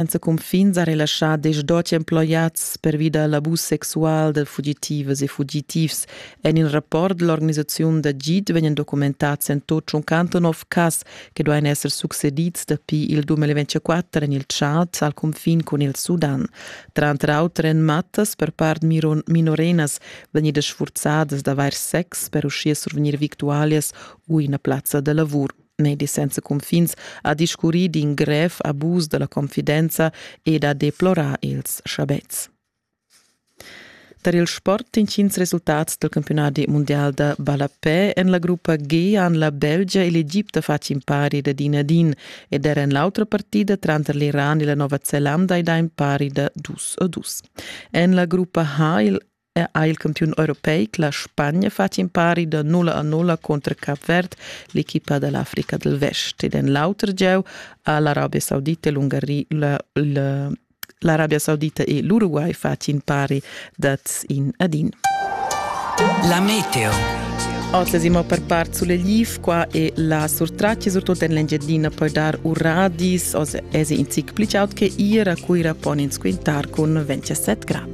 en ses cunfin sa relaschà desch doti emploiads pervi da l'abus sexual da fugitivas e fugitivs. En il rapport dell'organisazione da GIT vegnan documentads en tut 189 cas che duain esser succedids dapi il 2024 en il Tschad al cunfin cun il Sudan. Tranter auter en mattas per part minorenas vegnidas sfurzadas d'avair sex per uschia survegnir victualias u ina plazza da lavur. medis senza cunfins ha discurrì d'in grev abus da la confidenza ed ha deplorà ils schabetgs. Tar il sport intgins resultats del campionati mondial da ballapè en la gruppa G han la Belgia e l'Egipte fatg impari da din a din ed era en l'autra partida tranter l'Iran e la Nova Zelanda ed ha impari da dus a dus. En la gruppa H il ha er il campiun europeic la Spagna fatg impari da nulla a nulla contra Cap Verd, l'equipa dall'Africa del Vest. Ed en l'auter gieu ha l'Arabia Saudita e l'Ungari la, la, l'Arabia Saudita e l'Uruguay fatg impari dat in ad in. La meteo. Oz siamo per part sulle LIF, qua è la surtraccia, soprattutto in l'Engiadina, poi dar uradis, oz è in zic più aut che ira, cui rapon in squintar con 27 gradi.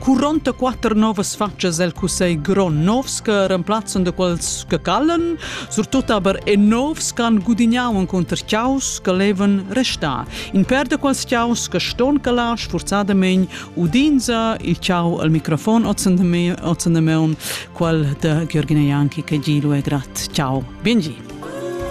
44 novas fatschas el cussegl grond novs che remplazzan da quels che callan, surtut aber e novs che han gudignau contr ciaus che levan restar. In per da quels ciaus che ston calar sforzadament udinza il ciao al microfon ozzandameon, qual da Georgina Janki che gilu e grat. Ciao, biengi.